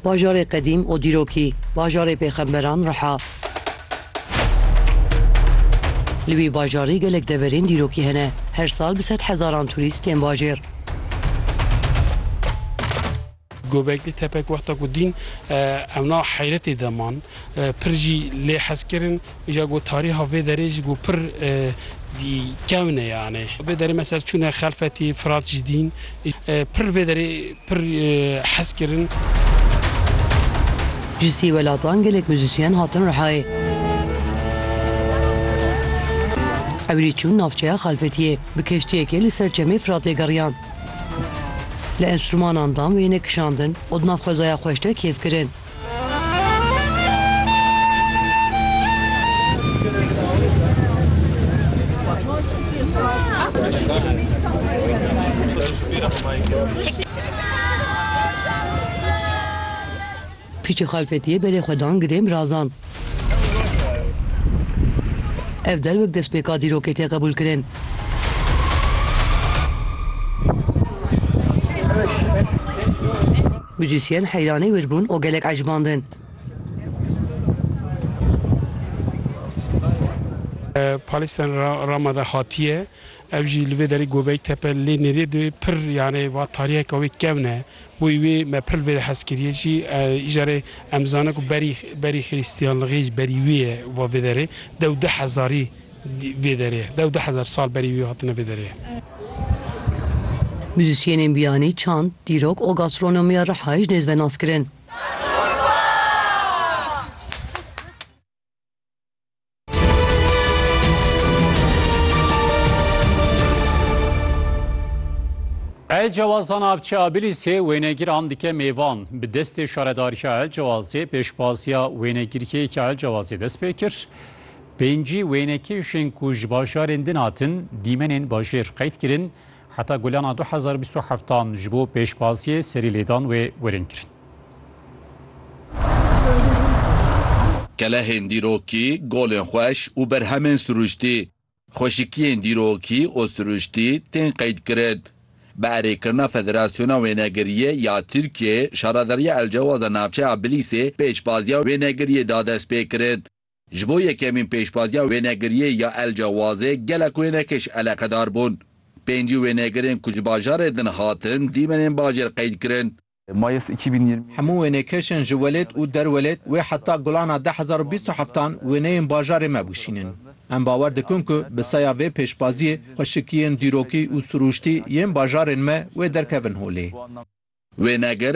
Bajarê qedîm û dîrokî, bajarê pêxemberan Riha. Li wî bajarî gelek deverên dîrokî hene. Her sal bi sed hezaran turîst tên bajêr. Gobekli Tepek wexta ku dîn, ew na heyretê de man. Pir jî lê hez kirin. Ja ku tarîxa vê derê ji ku pir dî kewn e yanê. Vê derê meser çûne xelfetî, firat ji dîn pir vê derê pir hez kirin. Ji sî welatan gelek bijîşiyan hatin Rihayê. Ewrî çûn navçeya Xelfetiyê, bi keştiyekê li ser çemê Firatê geriyan. Li enstrûmanan dan wê yêne kişandin û di nav xwezaya xweş de kêf kirin. Piştî xalfetiyê berê xwe dan Gidêm Razan. Ev der wek destpêka dîrokê tê qebûlkirin. Muzîsyen heyranê wir bûn û gelek ecbandin. Palestîn re Ramada hatiye, ev jî li vê derê Gobeyik Tepe lê nêrî de pir yanê va tarîheka wê kevn e. Boî wê me pir li vê de hez kirîye jî. Îcarê em zane ku berî berî xirîstîyanlighê jî berî wê ye va vê derê. Dew du hezarî vê derê. Dew du hezar sal berî wî hatine vê derê. Muzîsyenên biyanî, çand, dîrok û gastronomiya Rihayê ji nêzve nas kirin. El Cewazan Apçe Abilisê wênegiran dike mêvan. Bi destê şaredariya El Cewazê pêşbaziya wênegirkeyê ki El Cewazê dest pê kir. Pêncî wênekêşên ku ji bajarên din hatin dîmenên bajêr qeyd kirin, heta gulana du hezar û bîst û heft a ji bo pêşbaziyê serî lêdan wê werin kirin. Kelehên dîrokî, golên xweş û berhemên sirûştî, xweşikiyên dîrokî û sirûştî tên qeyd kirin. Bi erê kirina Federasyona Wênegiriyê ya Tirkiyeyê, Şaredarîya El Cewaza navçeya Bilîsê pêşbaziya wênegiriyê da destpêkirin. Ji bo yekemîn pêşbaziya wênegiriyê ya El Cewazê gelek wênekiş eleqedar bûn. Pêncî wênegirên ku ji bajarê din hatin dîmenên bajêr qeyd kirin. Mayis iki bin yirmi. Hemû wênekişên ji welêt û derwelêt wê heta gulana du hezar û bîst û heft an wêneyên bajarê me bikşînin. Em bawer dikin ku bi saya vê pêşbaziyê xweşikiyên dîrokî û sirûştî yên bajarên me wê derkevin holê. Wênegir